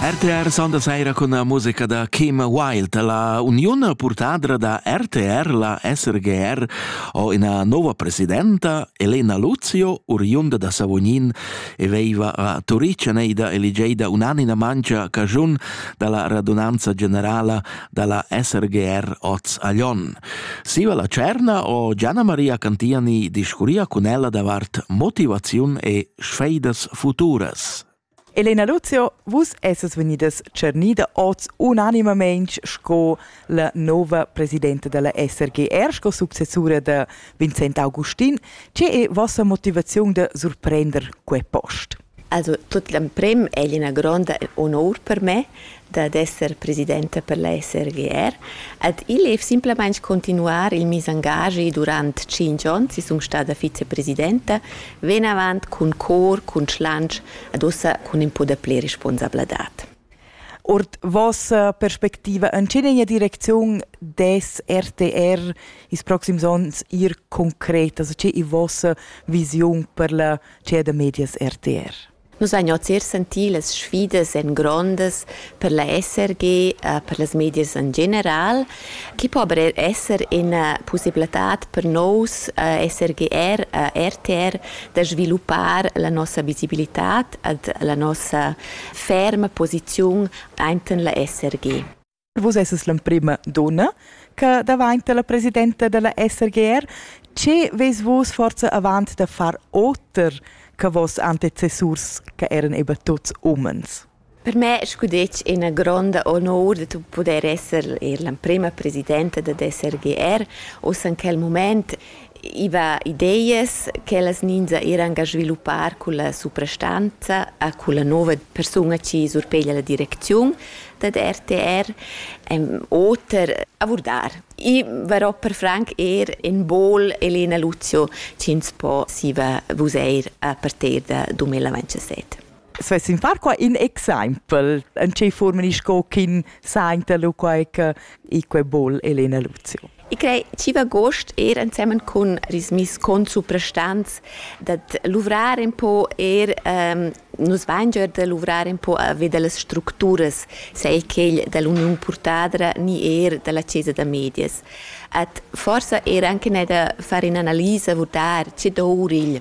RTR sondaseira cun la musica da Kim Wilde. La uniun purtadra da RTR, la SRGR, ho ina nova presidenta, Elena Luzio, oriunda da Savognin e veiva a Turic neida eligeida unanima mancia cagiun dalla radunanza generala dalla SRGR oz a Lyon. Siva la Tscherna o Gianna Maria Cantiani discurria cun ella davart motivaziun e sfeidas futuras. Elena Luzio, vus esses vegnidas tschernida oz unanimamein sco la nova presidenta della SRGR, sco successura de Vincent Augustin. Che è vostra motivaziun de surprender quei post? Also tut l'emprim è el ina gronda onur per me dad esser presidenta per la SRGR. Ed igl è simplamain continuar il mes engagi durant tschintg onns. I sun stada vicepresidenta, venavant cun cor, cun schlantsch ed ussa cun in po dapli responsabladad. Ord vossa perspectiva en tgenegna direcziun des RTR ils proxims onns ir concret? Also, tge è vossa visiun per la tgè da medias rtr. Nus ein oz er sentì las sfidas en grondas per la SRG, per las medias en general. Chi po aber esser ina possibilitad per nous SRGR, RTR da sviluppar la nossa visibilità ed la nossa ferma posiziun ainten la SRG? Vus esses l'emprema donna che davanti la presidenta della SRGR. Che ves vus forza avant da far oter che vos antecessurs che eran eben tuts umens? Per me scudetg ina gronda onor de tu poder esser l'emprema presidenta dell'SRGR. Ossa in quel moment I va ideas ch'ellas ninza eran ga sviluppar culla suprastanza a culla nova persuna chi surpeglia la direcziun dad RTR en oter abordar. I varò per franc eir in bol Elena Luzio chi'ns po siva vusair a partir da 2017. svessin far qua in exempel en tge forma sco ch'in sainta lu quai che i quei bol Elena Luzio. Ich crei chi'v agost er ensemen cun Rismis con suprastants dat luvrar un po er ähm, nus vain già da luvrar un po a veder las structuras, sei quel dall'Union Purtadra ni er dalla Chiesa da Medias. At forsa er anche ne da fare un'analisa vurdar che dovrigl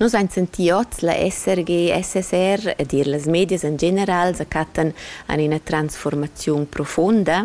Nus ein senti oz la SRG, SSR ed er las medias en general sa cattan an ina transformaziun profonda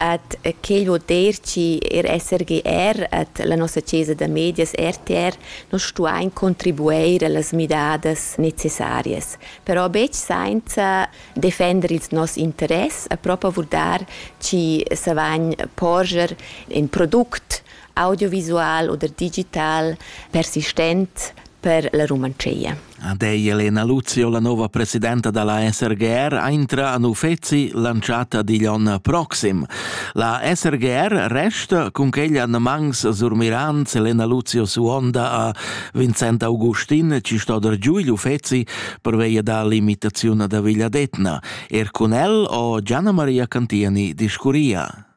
ad quel voder chi er SRGR at la nossa chesa da medias RTR nos stuain contribueir allas midadas necessarias. Però betg sainza defender ils nos interess a propa vurdar chi savagn porscher in product audiovisual oder digital persistent per la Rumantschia. Ad ei Elena Luzio, la nova presidenta dalla SRGR, aintra a Nufezi lanciata digl onn proxim. La SRGR resta cun quella mangs surmirans Elena Luzio Suonda a Vincent Augustin, ci sto der giù gli Ufezi per via dall'imitazione da Vigliadetna. Er con el o Gianna Maria Cantiani discuria.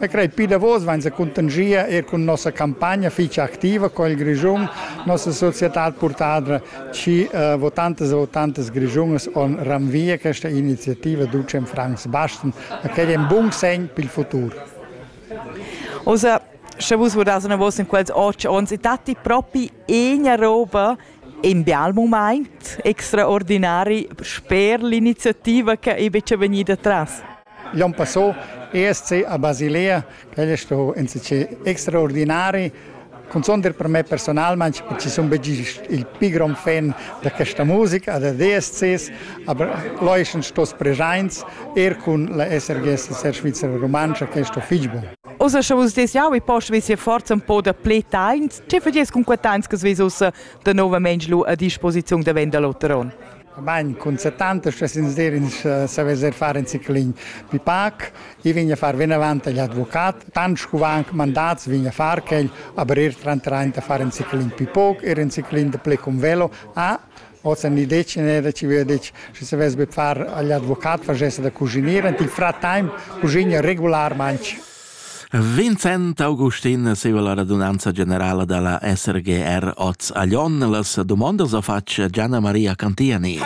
E crei pli davos vain sa cuntanschia eir cun nossa campagna fich activa co il Grischun, nossa societad purtadra, chi eh, votantas e votantas grischunas on ranvia questa iniziativa ducem Franz Basten, a quel è un bun segn per il futur. Also, sche vus vodas una vossa in quels otg onns, e datti proprio una roba in bial moment extraordinari sper l'iniziativa che è invece venuta tras? Glion Passò, ESC a Basilea, quel è stato insatge extraordinari. Cunzunt per me personalment, perché sono il più gran fan di questa musica, dei DSCs, aber là sono stati presenti er con la SRGS Ser Svizzera Romancia, che è stato fitch buon. Ussa sche vus des jau e post vis forza un po da ple tains, che fagies con quei tains che vis ussa de novament lu a disposiziun da Vendaloteron? Bain, cun 70 stuess ins dir ins savess er far in ciclin pli pac. I vegn a far vinavant agl advocat. Tant scu va anc mandats vegn a far quel, aber er trantrain da far in ciclin pli poc, er in ciclin de ple cum velo. Ah, ossa ni dec ne da ci via dec, schi savess be far agl advocat, facesse da cusinir, ant il fratime cusigna regularmaintg. Vincent Augustin seva la radunanza generala dalla SRGR oz a Lyon. Las dumondas a fatg Gianna Maria Cantiani.